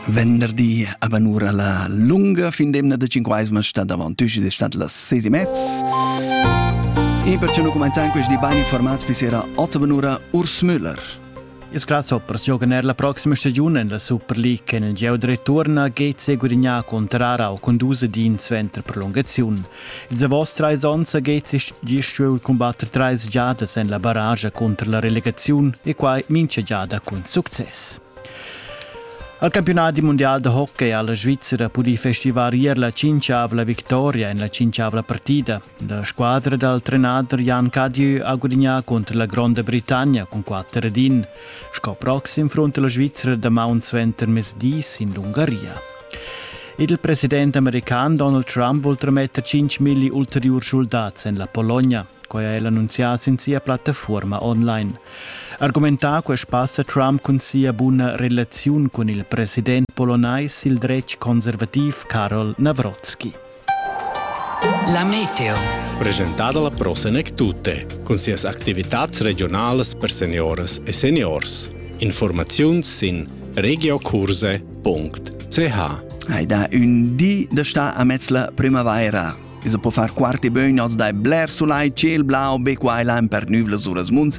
Venderdi avanura la lunga fin d'emna da Cinquaisma sta davant tusi de stat las sesi mezz. E perciò noi comenziamo questi ben informati per sera 8 avanura Urs Müller. Ils grasshoppers giocan er la prossima stagione en la Super League en il gieu de return a Gates e gudignar contrara o condusa din suenter prolungaziun. Ils davos trais onns ha Gezi gieu cumbatter trais giadas en la barragia cunter la relegaziun e quai mincha giada cun success. Al campionat mundial da hockey ha la Svizzera pudì festivar ier la cinciavla victoria en la cinciavla partida. La squadra dal trenader Jan Cadieu ha gudignà contro la Gronda Britannia cun 4 ed 1. Sco proxim frunta la Svizzera damaun suenter mesdis in l'Ungaria. Il president american Donald Trump vul trametter 5.000 ulteriur schuldats en la Pologna. Quai ha el annunzià sin sia plattafuorma online. Argumentà quest spass ha Trump cun sia buna relaziun cun il president polonais il dretg conservativ Karol Nawrocki. La meteo. Presentada la prossima tutte, con sias attività regionali per seniores e seniors. Informazioni in regiocurse.ch Hai da un di da sta a mezz la primavaira. Isa po far quarti bögn als dai bler sulai, ciel blau, be quai lain per nüvlas uras munds